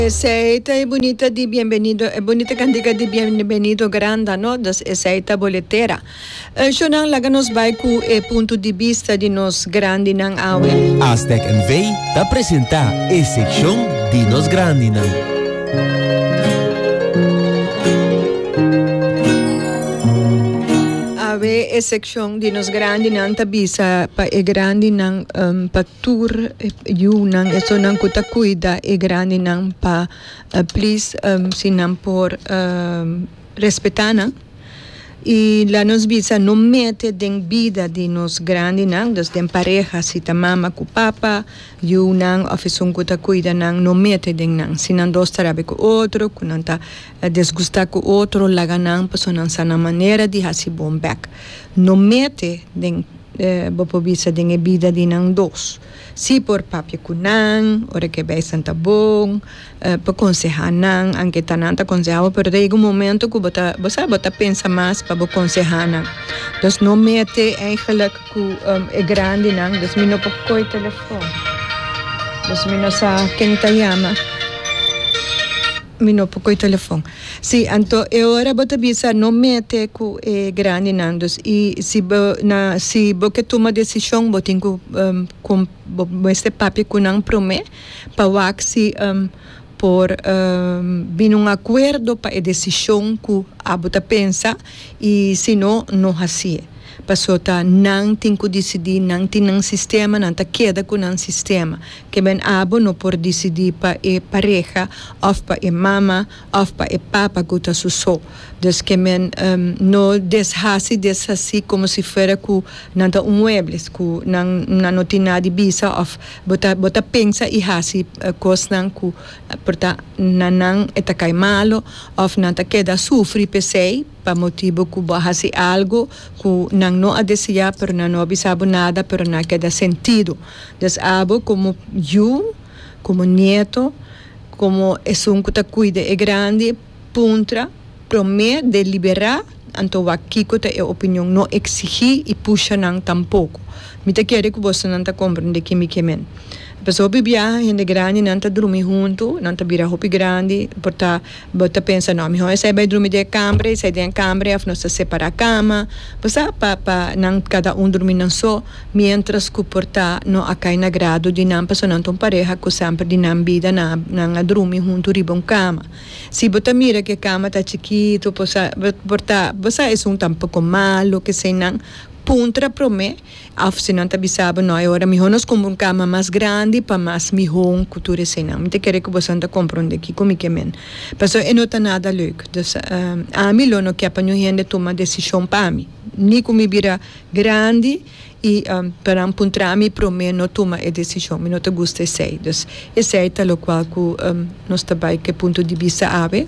Esei ta e bunita di bienvenido, e bunita kantika di bienvenido granda, no? Dus esei ta boletera. Shonnan, laga nos bai ku e punto di bista di nos grandinan awe. Aztec NV ta presentá e sekshon di nos grandinan. Awe e sekshon di nos grandinan ta bisa pa e grandinan pa. tur yunan esonan cu ta cuida e grandinan pa please si nan por respeta nan y laga nos bisa no mete den bida di nos grandinan dus den pareha si ta mama cu papa yunan of esun cu ta cuida nan no mete den nan si nan dos ta rabia cu otro cu nan ta desgusta cu otro laga nan pasobra nan sa nan manera di haci bon bek no mete den Bo por bisa den e bida di nan dos. Sí por papia ku nan ora ke bai santa bon pa konsehá nan, anke ta nan ta konsehá bo pero ta yega un momento ku bo ta bo sa bo ta pensa mas pa bo konsehá nan. Entonces no mete eigenlik ku e grandinan dus mi no por koe telefòn. Dus mi no sa ken ta yama. Mi no por koe telefon. Si, anto e ora bo ta bisa no mete ku e grandinan. Dus i si bo na si bo ke tuma desishon bo tin ku kon bo mester papia ku nan promé pa wak si por bini un akuerdo pa e desishon ku abo ta pensa i si no no hasié. Pasota nan tin cu dicidi, nan tin nan sistema, nan ta keda cu nan sistema. Keben abo no por dicidi pa e pareha of pa e mama of pa e papa cu ta su so. Dus keben no deshaci, deshaci como si fuera cu nan ta un muebles cu nan nan no tin na di bisa of bo ta bo ta pensa y haci cosnan cu por ta na nan e ta cay malo of nan ta keda sufri pesey. Pa motibu ku bo a hasi algu ku nan no a deseá, pero nan no a bisa bo nada, pero nan a keda sentidu. Des abo komo yu, komo nieto, komo esun ku ta kuida e grandi, puntra promé, deliberá, anto wak kiko ta e opinion. No eksigí i pusha nan tampoko. Mi ta kere ku bosonan ta komprendé kin mi ke men. Pasobra hopi biaha hende grandinan ta drumi huntu, nan ta bira hopi grandi, por ta. Bo ta pensa, No, mihó esei bai drumi den e kamber, esei den e kamber èf nos ta separá kama, bo sa, pa pa nan kada un drumi nan so, miéntras ku por ta no a kai na grado di nan, pasobra nan ta un pareha ku semper di nan bida nan a nan a drumi huntu riba un kama. Si bo ta mira ku e kama ta chikitu, bo sa, bo por ta, bo sa esun tampoko malu, kesei nan puntra promé. Of si nan ta bisa bo, No, e ora mihó nos kumpra un kama mas grandi pa mas mihó ku tur eseinan. Mi ta kere ku boso nan ta komprondé kiko mi ke men. Pasó e no ta nada leuk. Dus, ami lo no ke pa niun hende tuma desishon pa mi. Ni ku mi bira grandi i pa nan puntra mi promé no tuma e desishon. Mi no ta gusta esei. Dus, esei ta lokual ku nos ta bai ku e punto di bista awe